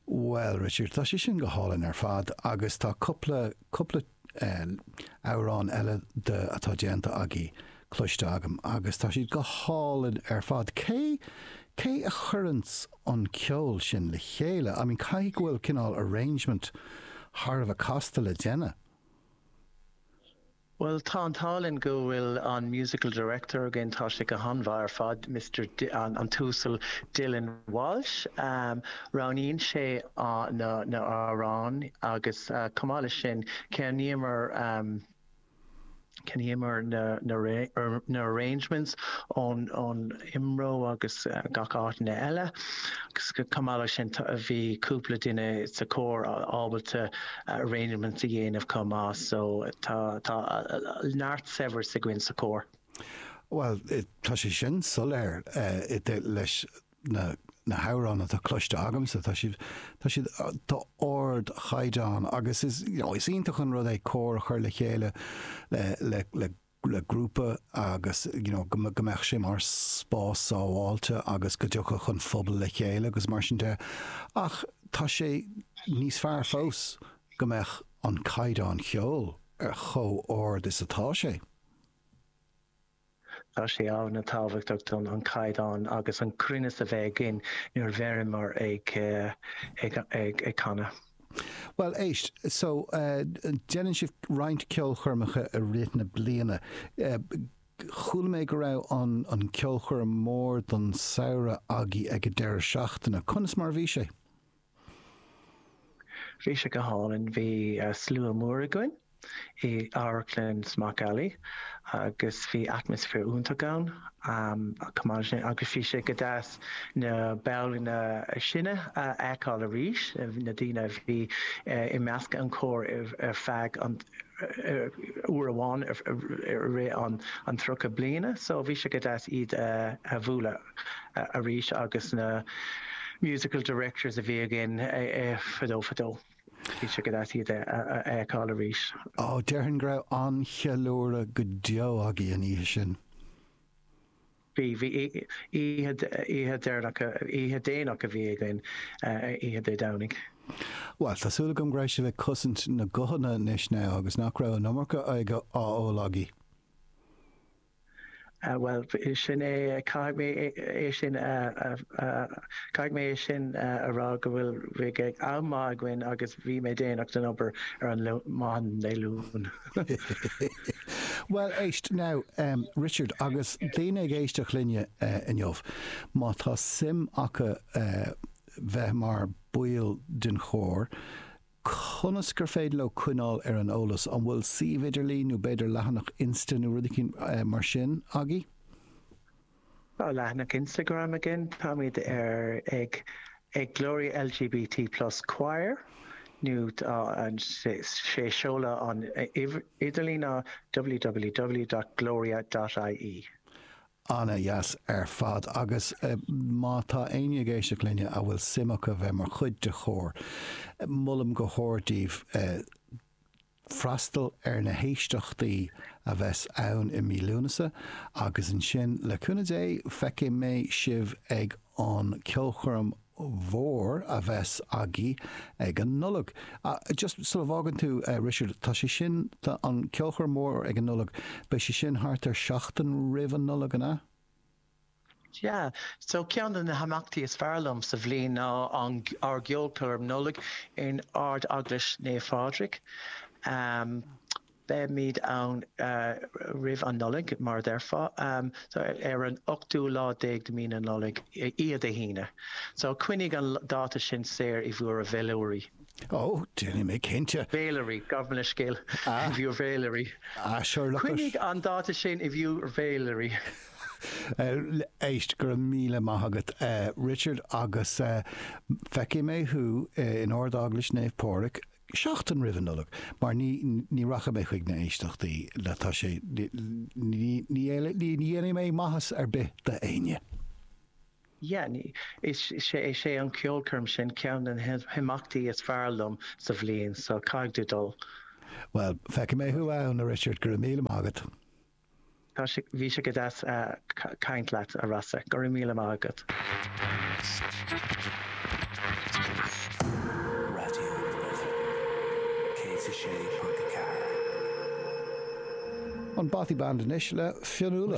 Bhuel, Richard, tá sé sin go hálainn ar fad agus tá cúpla, cúpla eh, amhrán eile de, atá déanta agaibh cloiste agam agus tá siad go hálainn ar fad. Cé, cé a chuireanns an ceol sin le chéile? I mean, caithfidh go bhfuil cineál arrangement thar a bheith casta le déanamh. Bhuel, tá an t-ádh linn go bhfuil an Musical Director againn, tá sé go han-mhaith ar fad, Mister, an tUasal Dylan Walsh. Roghnaíonn sé na h-amhráin agus chomh maith leis sin, cheannaíomar, cheannaíomar na arrangements ón, Imro agus gach áiteanna eile. Chomh maith leis sin bhí cúpla duine sa chór ábalta arrangements a dhéanamh chomh maith so tá neart saibhreas againn sa chór. Bhuel, tá sé sin soiléir leis na hamhráin atá cloiste agamsa. Tá siad tá siad d'ardchaighdeán agus is iontach an rud é cór a chur le chéile le le grúpa agus go mbeadh sé mar spás sábháilte agus go dtiocfadh an pobal le chéile agus mar sin de ach tá sé níos fearr fós go mbeadh an caighdeán cheoil ar chomh ard is atá sé. Tá sé ana tábhachtach dúinn an caighdeán agus an cruinneas a bheith againn nuair a bheimid ag ag ag canadh. Bhuel, éist, so, déanann sibh roinnt ceolchoirmeacha i rith na bliana. Chuala mé go raibh an ceolchoirm mór don samhradh agaibh ag an deireadh seachtaine. Conas mar a bhí sé? Bhí sé go hálainn. Bhí slua mór againn. i amharclann Smock Alley agus bhí atmaisféar iontach ann agus bhí sé go deas na ballanna sine a fheiceáil arís, na daoine a bhí i measc an chóir ar feadh an uair amháin i rith an tríocha bliana so bhí sé go deas iad a bhualadh arís agus na musical directors a bhí againn fadó fadó. Bhí sé go deas iad a fheiceáil arís. Ó, déarfainn go raibh an-cheiliúradh go deo agaibh an oíche sin. Bhí, bhí. Oíche, oíche dheireanach, oíche dhéanach a bhí againn, oíche Dé Domhnaigh. Bhuel, tá súil agam go raibh sibh ag cosaint na guthanna anois now agus nach raibh an iomarca aighe á ól agaibh. Bhuel, sin é, caithfidh mé é sin a, caithfidh mé é sin a rá go bhfuil, bheadh am maith againn agus bhí mé déanach don obair ar an maidin Dé Luain. Bhuel, éist, now, Richard, agus daoine ag éisteacht linne inniu, má tá suim acu bheith mar baill den chór, conas gur féidir leo coinneáil ar an eolas, an bhfuil suíomh idirlín nó b'fhéidir leathanach Insta nó rud éigin mar sin agaibh? Tá leathanach Instagram againn, táimid ar ag ag Gloria LGBT Plus Choir nó is é seoladh an idirlín ná www.gloria.ie. Ana-dheas ar fad, agus má tá éinne ag éisteacht linne a bhfuil suim acu bheith mar chuid de chór, molaim go hard daoibh freastal ar na héisteachtaí a bheas ann i mí Lúnasa, agus ansin, le cúnamh Dé, feicfidh mé sibh ag an ceolchoirm mhór a bheas agaibh ag an Nollaig. Just sula bhfágann tú, Richard, tá sé sin, an ceolchoirm mhór ag an Nollaig, beidh sé sin thart ar seachtain roimh an Nollaig, an ea? Yeah. So ceann de na himeachtaí is fearr liom sa bhliain ná an, ár gceolchoirm Nollag in Ard-Eaglais Naomh Phádraig. Beimid ann roimh an Nollaig, mar a déarfá, ar an ochtú lá déag de mhí na Nollag, is é Dé hAoine. So, coinnigh an dáta sin saor i bhur bhféilirí. Ó, déanfaidh mé, cinnte. Féilirí, gabh mo leithscéal, i bhur bhféilirí. Ah, sure, look. Coinnigh an dáta sin i bhur bhféilirí. Éist, go raibh míle maith agat, Richard, agus feicfidh mé thú in Ard-Eaglais Naomh Pádraig. seachtain roimh an Nollaig, mar ní ní rachaidh mé chuig na éisteachtaí le tá sé ní ní ní éile ní ní dhéanfaidh mé maitheas ar bith d'éinne. Yeah, ní is sé is é an ceolchoirm sin ceann de na himeachtaí is fearr liom sa bhliain, so caithfidh tú dul. Bhuel, feicfidh mé thú ann, now, Richard, go raibh míle maith agat. Tá sé, bhí sé go deas caint leat, a Rossa. Go raibh míle maith agat. An Bothy Band anois le Fionnuala.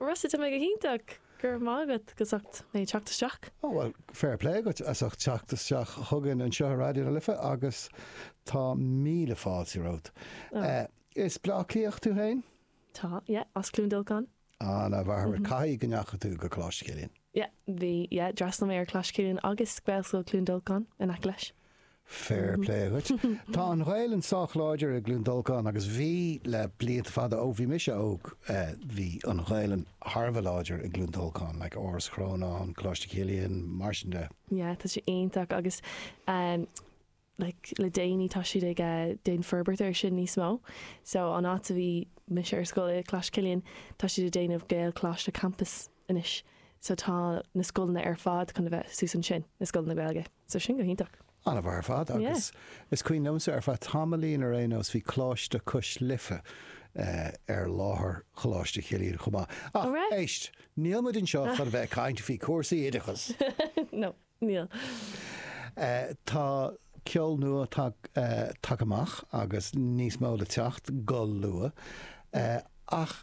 Rossa, Tá mé go hiontach. Go raibh maith agat as ucht mé teacht isteach. Ó, bhuel, fair play agat as ucht teacht isteach chugainn anseo ar Raidió na Life agus tá míle fáilte romhat. Is Bleá Cliathach tú féin? Tá, yeah, as Cluain Dolcáin. Ah, an-mhaith. Caithfidh go ndeachaigh tú go Coláiste Chilliain. Yeah, bhí, yeah, d'fhreastail mé ar Choláiste Chilliain agus Gaelscoil Chluain Dolcáin in aice leis. Fair play agat. Tá an Ghaelainn sách láidir i gCluain Dolcáin agus bhí le blianta fada, ó bhí mise óg, bhí an Ghaelainn thar a bheith láidir i gCluain Dolcáin, like Áras Chrónáin, Coláiste Chilliain, mar sin de. Yeah, tá sé iontach agus like le déanaí tá siad ag déanamh forbairt air sin níos mó. So an áit a bhí mise ar scoil i Coláiste Chilliain, tá siad ag déanamh Gaelcholáiste campus anois. So tá na scoileanna ar fad chun a bheith suas ansin, na scoileanna Gaeilge. So sin go hiontach. An-mhaith ar fad agus is cuimhin liomsa ar feadh tamaillín ar aon nós bhí Coláiste Cois Life ar láthair Choláiste Chilliain chomh maith. Ach, éist, níl muid anseo chun a bheith ag caint faoi cúrsaí oideachas! No, níl. Tá ceol nua tagtha amach agus níos mó le teacht go luath ach.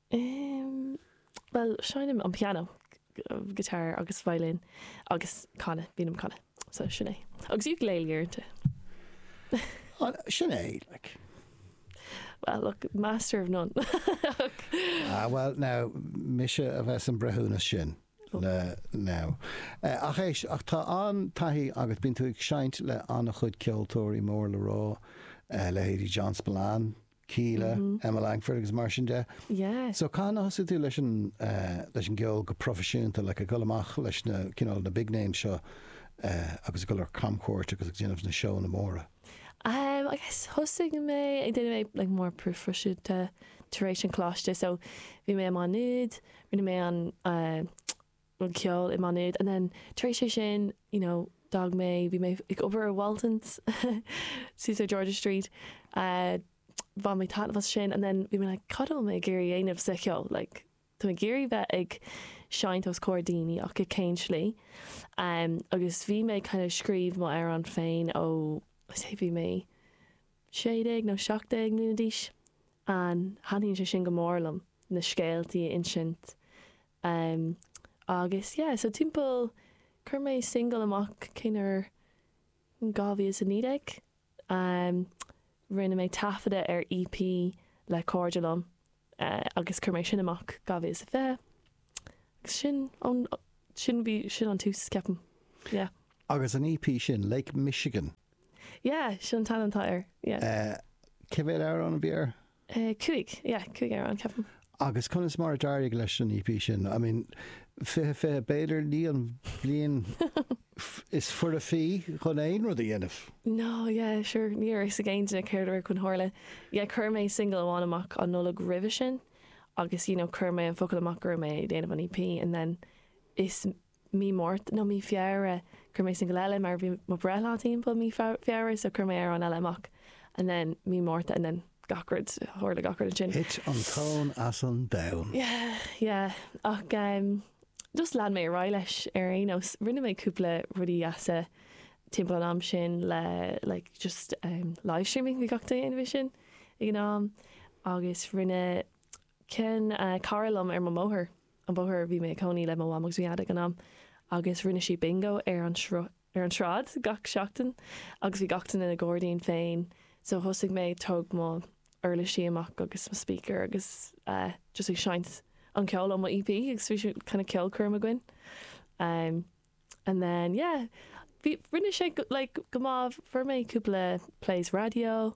Umm, bhuel, seinnim an pianó, guitar agus violin agus canadh, bím ag canadh. So, sin é. Agus ukulele uaireanta. Ah, sin é, like. Well, look, master of none. Ah, bhuel, now, mise a bheith sa mbreithiúnas sin, le, now. Eh, ach éist, ach tá an-taithí agat, bíonn tú ag seinnt le an-chuid ceoltóirí mór le rá, eh, leithéidí John Spillane, Kíla, Emma Langford agus mar sin de. So cathain a thosaigh tú leis an gceol go proifisiúnta, like ag dul amach leis na, cineál, na big names seo agus ag dul ar camchuairt agus ag déanamh na seónna móra? I guess thosaigh mé ag déanamh é like more proifisiúnta tar éis an choláiste. So bhí mé i Má Nuad, rinne mé an, an ceol i Maynooth and then tar éis é sin you know d'fhág mé bhí mé ag obair i Walton's suas ar George's Street eh bhain mé taitneamh as sin and then bhí mé like cad a bhfuil mé ag iarraidh a dhéanamh sa cheol like tá mé ag iarraidh bheith ag seinnt os comhair daoine ach i cén slí eh agus bhí mé ag kind of scríobh mo amhráin féin ó I'd say bhí mé 16 nó 17 mbliana d'aois and thaitníonn sé sin go mór liom na scéaltaí a insint Amm, agus yeah, so timpeall, chuir mé single amach cén uair, 2019, amm, rinne mé taifeadadh ar EP le cairde liom, eh, agus chuir mé sin amach 2020, agus ansin, ón, sin, bhí, sin an tús, ceapaim, yeah. Agus an EP sin, Lake Michigan? Yeah, sin an t-ainm atá air, yeah. Eh, cé mhéad amhrán a bhí air? Cúig, yeah, cúig amhrán, ceapaim. Agus conas mar a d'éirigh leis an EP sin? I mean, fiche, fiche, b'fhéidir ní an bhliain is fearr chun aon rud a dhéanamh. No, yeah, sure, ní raibh fhios ag aon duine céard a raibh chun tharla. Yeah, chuir mé single amháin amach an Nollaig roimhe sin agus, you know, chuir mé an focal amach go raibh mé ag déanamh an EP and then mí Márta nó mí Feabhra chuir mé singil eile mar bhí mo breithlá timpeall mí Feabhra so chuir mé amhrán eile amach and then mí Márta and then gach rud tharla gach rud ansin. Thit an tóin as an domhan. Yeah yeah ach em just lean mé ar aghaidh leis ar aon nós. Rinne mé cúpla rudaí deasa timpeall an am sin le like just em live streaming bhí gach duine ag déanamh sin ag an am agus rinne mé ceann, cara liom ar mo bhóthar. an bóthar, bhí mé ag cónaí le mo mham agus mo dhaid ag an am agus rinne siad bingo ar an sruth, ar an tsráid gach seachtain agus bhí gach duine ina ngairdín féin so thosaigh mé ag tóg mo uirlisí amach agus mo speaker agus eh just ag seinnt an ceol ó mo EP agus bhí sé kinda ceolchoirm againn. And then yeah bhí rinne sé go like go maith fuair mé cúpla plays raidió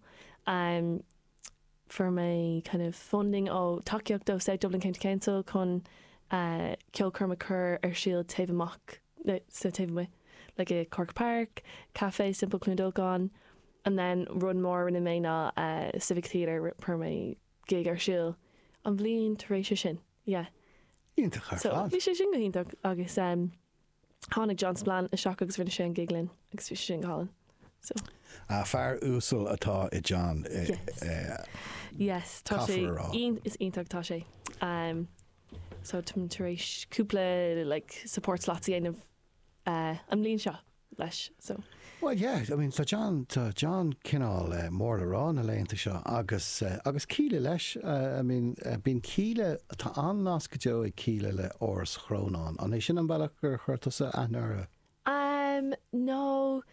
um fuair mé kind of funding ó tacaíocht ó South Dublin County Council chun eh ceolchoirm a chur ar siúl taobh amach nó taobh amuigh like i Corkagh Park, Caifé Simple Cluain Dolcáin and then rud mór a rinne mé ná eh Civic Theatre ri- fuair mé gig ar siúl an bhliain tar éis sin. Yeah. Iontach ar fad. So bhí sé sin go hiontach agus em tháinig John Spillane isteach agus rinne sé an gig linn agus bhí sé sin go hálainn. So. Ah fear uasal atá i John eh Yes. eh Yes tá sé caithfear a rá. iontach is iontach atá sé. Em so tá mé tar éis cúpla like support slots a dhéanamh eh an mbliain seo. leis so. Bhuel, yeah, I mean, tá John, tá John cineál eh, mór le rá na laethanta seo agus, eh, agus Kíla leis, eh, I mean, eh, bíonn Kíla, tá an-nasc go deo ag Kíla le Áras Chrónáin. An é sin an bealach gur chuir tusa aithne orthu? Um, no,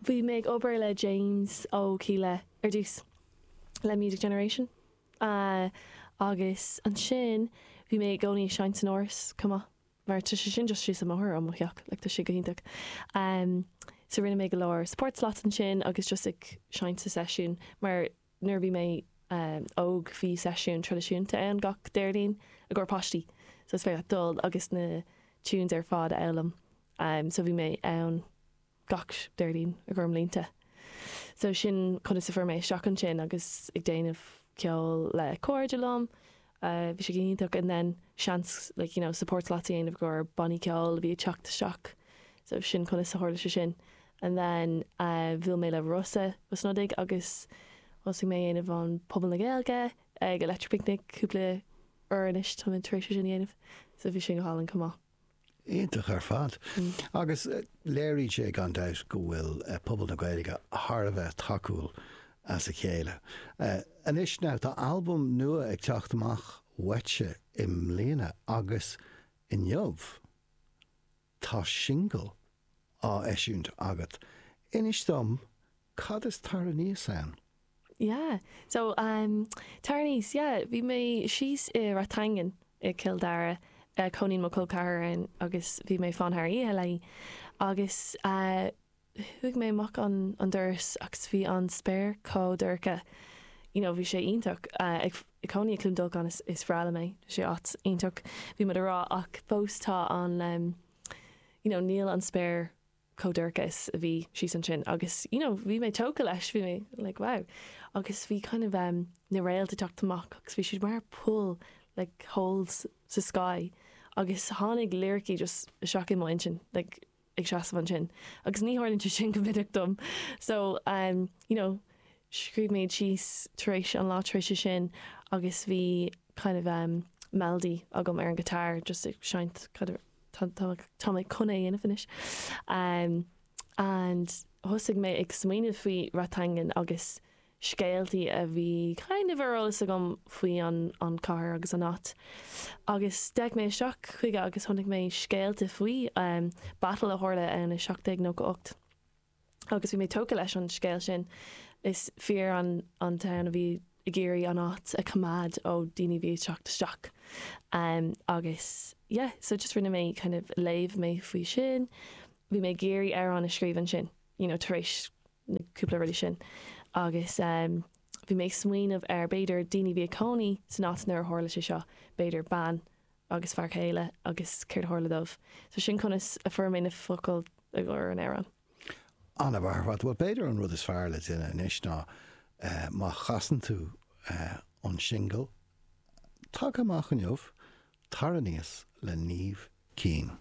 bhí mé ag obair le James ó Kíla ar dtús le Music Generation. Uh, agus ansin bhí mé i gcónaí ag seinnt san Áras chomh maith. Mar tá sé sin just síos an mbóthar ó mo theach, like tá sé go hiontach. Em so rinne mé go leor support slots ansin agus just ag seinnt sa seisiún mar nuair a bhí mé em óg bhí seisiún traidisiúnta ann gach Déardaoin i gcomhair páistí so is féidir leat dul agus na tunes ar fad a fhoghlaim em so bhí mé ann gach Déardaoin i gcomhair blianta. So sin conas a fuair mé isteach ansin agus ag déanamh ceoil le cairde liom. Bhí sé go hiontach and then seans like you know support slots a dhéanamh i gcomhair bannaí ceoil a bhí ag teacht isteach so sin conas a tharla sé sin. And then bhuail mé le Rossa Ó Snodaigh agus thosaigh mé ag déanamh an Puball na Gaeilge ag Electric Picnic cúpla uair anois tá mé tar éis é sin a dhéanamh so bhí sin go hálainn chomh maith. Iontach ar fad. Agus léiríonn sé gan dabht go bhfuil pobal na Gaeilge thar a bheith tacúil dá chéile. Anois now, tá albam nua ag teacht amach uaitse i mbliana agus inniu tá singil á eisiúint agat. Inis dom Cad is tar aníos ann? Yeah, so um tar aníos, yeah, bhí mé síos i Rathangan i gCill Dara, chónaíonn mo chol ceathar ann agus bhí mé fán thar oíche léi agus chuaigh mé amach an an doras agus bhí an spéir chomh dorcha, you know, bhí sé iontach ag cónaí i gCluain Dolcáin, is bhreá liom é, tá sé áit iontach, bhí muid a rá ach fós tá an, you know, níl an spéir chomh dorcha is a bhí síos ansin agus you know bhí mé tógtha leis, bhí mé like wow agus bhí kind of um na réalta teacht amach agus bhí siad mar poill like holes sa sky agus tháinig liricí just isteach i m'intinn like ag seasamh ansin agus ní tharlaíonn sé sin go minic dom so um you know scríobh mé iad síos tar éis an lá tar éis sin agus bhí kind of um melody agam ar an guitar just ag seinnt kind of Tá mé chun é a dhéanamh anois. And thosaigh mé ag smaoineamh faoi Rathangan agus scéaltaí a bhí kind of ar eolas agam faoi an chathair agus an áit. Agus d'fhéach mé isteach chuige agus chonaic mé scéalta faoi battle a tharla ann i 1798. agus bhí mé tógtha leis an scéal sin. Is fir an an town a bhí ag iarraidh an áit a choimeád ó daoine a bhí ag teacht isteach em agus yeah so just rinne mé kind of léamh mé faoi sin. Bhí mé ag iarraidh amhrán a scríobh ansin you know tar éis na cúpla rudaí sin agus em bhí mé ag smaoineamh ar b'fhéidir daoine a bhí ag cónaí san áit nuair a tharla sé seo, b'fhéidir bean agus fear céile agus céard a tharla dóibh. So sin conas a fuair mé na focail i gcomhair an amhráin. An-mhaith ar fad, bhuel b'fhéidir an rud is fearr le déanamh anois ná má chasann tú an singil tagtha amach inniu, Tar Aníos le Niamh Keane.